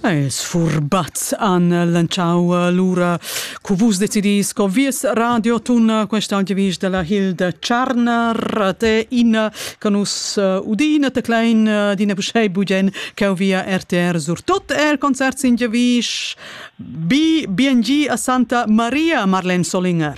Es furbaz an lanciau lura cu vus decidis co vies radio tun questa audivis de la Hilde Tscharner de in che nus uh, udina te klein uh, dina buschei bugen che via RTR sur tot el concert sin gevis bi biengi a Santa Maria Marlen Solinger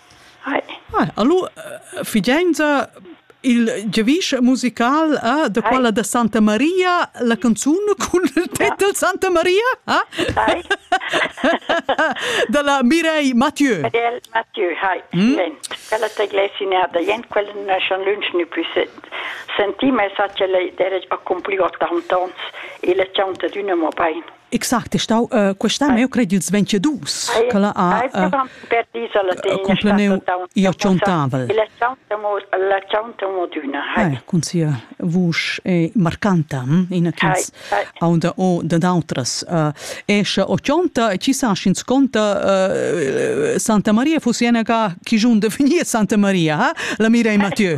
Ah, allora, figenza il giavisch musical eh, da quella da Santa Maria, la canzun cun il titel Santa Maria? Eh? Dalla Mireille Mathieu. Mireille Mathieu, hai. Mm? Quella te glessinea da jen, quella non è schon lunch ni più sentì, ma sa che lei deve accomplir 80 ans e le chanta d'una mo bain. Exact, è stau uh, questa me cred ils 22 che la ha uh, complenou ia chontavel. La chantamo d'una. Hai. Cun sia vusch è marcanta, hm? ina ch'ins ha unda o dad autras. Uh, esce o chonta e ci sa sch'ins conta uh, Santa Maria fosse ena ca chi giun definie Santa Maria, ha? La mira e Mathieu.